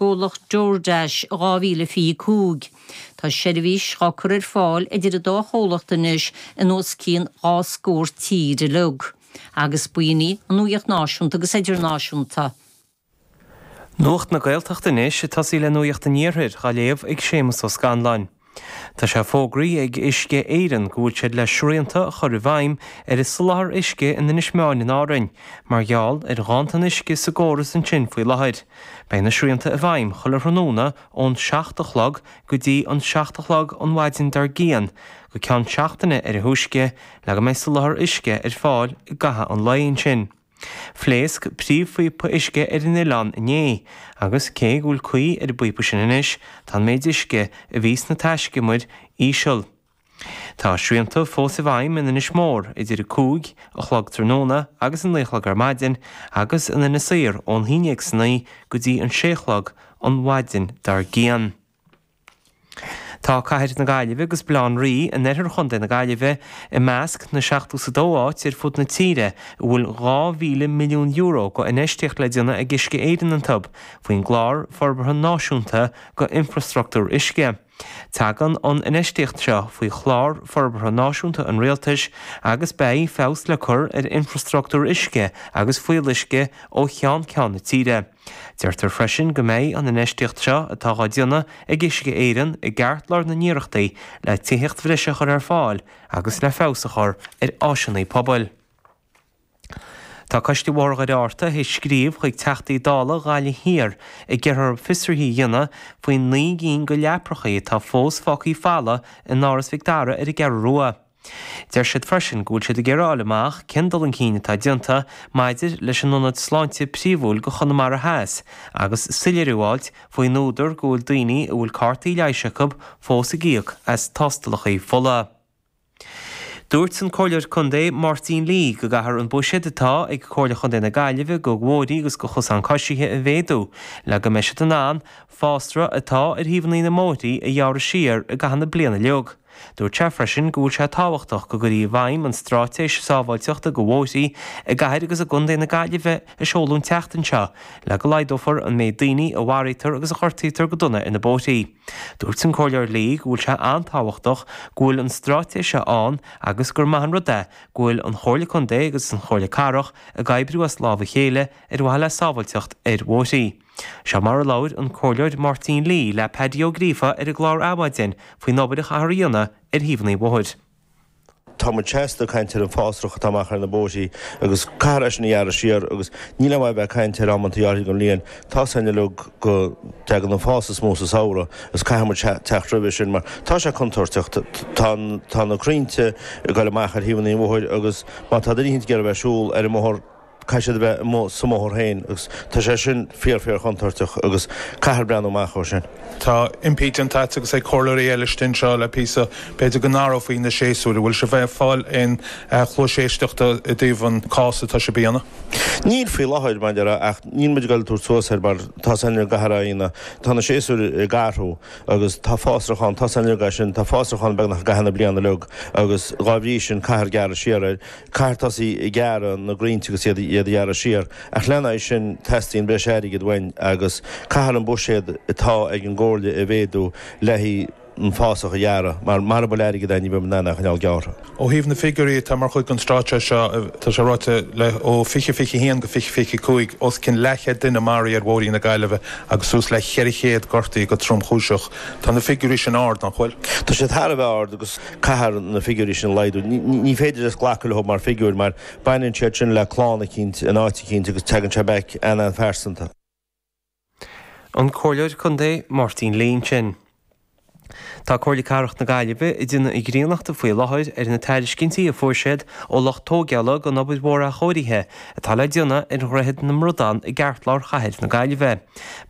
gcomhlacht DoorDash in 2025. Tá seirbhís á cur ar fáil idir an dá chomhlacht anois in os cionn dhá scór tír uilig, agus b'in í an nuaíocht náisiúnta agus idirnáisiúnta. Nuacht na Gaeltachta anois ag tosaí le Nuaíocht an Iarthair, á léamh ag Séamus Ó Scanláin. Tá sé fógraithe ag Uisce Éireann go bhfuil siad le srianta a chur i bhfeidhm ar an soláthar uisce in Inis Meáin in Árainn mar gheall ar ghanntan uisce sa gcóras ansin faoi láthair. Beidh na srianta i bhfeidhm chuile thráthnóna ón 7 a chlog go dtí an 7 a chlog an mhaidin dár gcionn go ceann seachtaine ar a thúisce le go mbeidh soláthar uisce ar fáil i gcaitheamh an lae ansin. Phléasc príomhphíopa uisce ar an oileán inné agus cé go bhfuil caoi ar an bpíopa sin anois, tá an méid uisce a bhí sna taiscumair íseal. Tá srianta fós i bhfeidhm in Inis Mór idir an 5 a chlog tráthnóna agus an 9 a chlog ar maidin agus in Inis Oírr ón 11 san oíche go dtí an 6 a chlog an mhaidin dár gcionn. Tá cathair na Gaillimhe agus Baile Átha an Rí, in oirthear Chontae na Gaillimhe, i measc na seachtó is a dó áit ar fud na tíre a bhfuil €2,000 milliún go infheistíocht le déanamh ag Uisce Éireann iontu faoin gClár Forbartha Náisiúnta go Infrastruchtúr Uisce. Tagann an infheistíocht seo faoi Chlár Forbartha Náisiúnta an Rialtais agus beidh feabhas le cur ar infrastruchtúr uisce agus fuíolluisce ó cheann ceann na tíre. Deirtear freisin go mbeidh an infheistíocht seo, atá á déanamh ag Uisce Éireann, i gceartlár na n-iarrachtaí le tithíocht bhreise a chur ar fáil agus le feabhas a chur ar áiseanna pobail. Tá Coiste Bhóthar Dhoire Fhearta ag scríobh chuig Teachtaí Dála Ghaillimh Thiar ag iarraidh orthu fiosruithe a dhéanamh faoin naoi gcinn go leaprachaí atá fós fágthaí folamh in Áras Mhic Dara ar an gCeathrú Rua. Deir siad freisin go bhfuil siad ag iarraidh a fháil amach cén dul chun cinn atá déanta maidir leis an ionad sláinte príomhúil go Chonamara Theas agus soiléiriú a fháilt faoin údar go bhfuil daoine a bhfuil cártaí leighis acu fós ag íoc as tástálacha fola. Dúirt an Comhairleoir Contae Máirtín Lee go gcaithfear an buiséad atá ag Comhairle Chontae na Gaillimhe go bhóithrí agus go chosáin coisithe a mhéadú le go mbeidh siad in ann fásra atá ar thaobhannaí na mbóithrí a ghearradh siar i gcaitheamh na bliana uilig. Dúirt sé freisin go bhfuil sé tábhachtach go gcuirfí i bhfeidhm an Stráitéis Sábháilteachta do Bhóithrí i gCathair agus i gContae na Gaillimhe a seoladh an tseachtain seo le go laghdófar an méid daoine a mharaítear agus a ghortaítear go dona ar na bóithrí. Dúirt an Comhairleoir Lee go bhfuil sé an-tábhachtach go bhfuil an stráitéis seo ann agus gur maith an rud é go bhfuil an Chomhairle Contae agus an Chomhairle Cathrach ag oibriú as lámha a chéile ar mhaithe le sábháilteacht ar bhóithrí. Seo mar a labhair an Comhairleoir Máirtín Lee le Paddy Ó Gríofa ar an gclár Adhmhaidin faoin obair a chaithfear a dhéanamh ar thaobhanna an bhóthair. Tá muid seasta ag caint ar an bhfásrach atá amach ar na bóithrí agus caithfear é sin a ghearradh siar agus níl aon mhaith bheith ag caint ar amanntaí áirthe den bhliain. Tá a fhios againn uilig go dtagann an fás is mó sa samhradh agus caithfidh muid teacht roimhe sin mar tá sé contúirteach. Tá na crainnte ag goil amach ar thaobhanna an bhóthair agus má tá duine éicint ag iarraidh bheith ag siúl ar an mbóthar caithfidh siad a bheith amuigh sa mbóthar féin agus tá sé sin fíor fíor chontúirteach agus caithfear breathnú amach dó sin. Tá impí déanta agat agus ag comhairleoirí eile faoi seo le píosa, b'fhéidir go n-athrófaí na séasúir, an bhfuil sibh ag fáil aon chluais éisteachta i dtaobh an cás atá sibh a dhéanamh? Níl faoi láthair, a Phádraic, ach níl muid ag dul tabhairt suas air mar tá a fhios ag chuile dhuine, tá na séasúir ag athrú agus tá fásrach ann, tá a fhios againn sin, tá fásrach ann beagnach i gcaitheamh na bliana uilig agus dhá bhrí sin caithfear gearradh siar air. caithfear tosaí ag gearradh na gcrainnte agus iad a ghearradh siar, ach lena aghaidh sin teastaíonn breis airgid uainn agus caithfear an buiséad atá ag an gComhairle a mhéadú le haghaidh an fásach a ghearradh mar mara bhfuil airgead ann ní bheidh muid in ann é a choinneáil gearrtha. Ó thaobh na figiúirí atá mar chuid den Straitéis seo, tá sé ráite le ó 2021 go 2025, os cionn leathchéad duine a maraíodh ar bhóithre na Gaillimhe agus suas le 400 a gortaíodh go tromchúiseach. Tá na figiúirí sin ard, nach bhfuil? Tá siad thar a bheith ard agus. Caithfear na figiúirí sin a laghdú. Ní féidir linn glacadh leo mar figiúir mar baineann siad sin le clann eicínt in áit eicínt agus teagann sé back an-an-phearsanta. An Comhairleoir Contae Máirtín Lee ansin. Tá Comhairle Cathrach na Gaillimhe ag déanamh a gcríonnachta faoi láthair ar na tairiscintí a fuair siad ó lucht tóigeála don obair mhór athchóirithe atá le déanamh ar Dhroichead na mBradán i gceartlár chathair na Gaillimhe.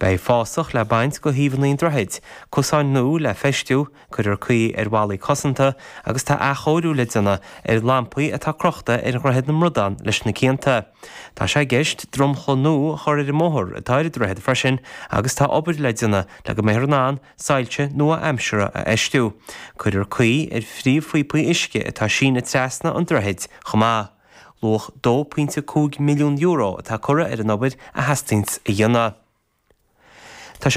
Beidh fásach le baint de thaobhanna an droichid, cosáin nua le feistiú, cuirfear caoi ar bhallaí cosanta agus tá athchóiriú le déanamh ar lampaí atá crochta ar Dhroichead na mBradán leis na cianta. Tá sé i gceist dromchla nua a chur ar an mbóthar atá ar an droichead freisin agus tá obair le déanamh le go mbeifear in ann soilse nua-aimseartha a fheistiú. Cuirfear caoi ar phríomhphíopaí uisce atá ag síneadh trasna an droichid chomh maith. Luach €2.5 milliún atá curtha ar an obair a theastaíonns a dhéanamh. Tá sé.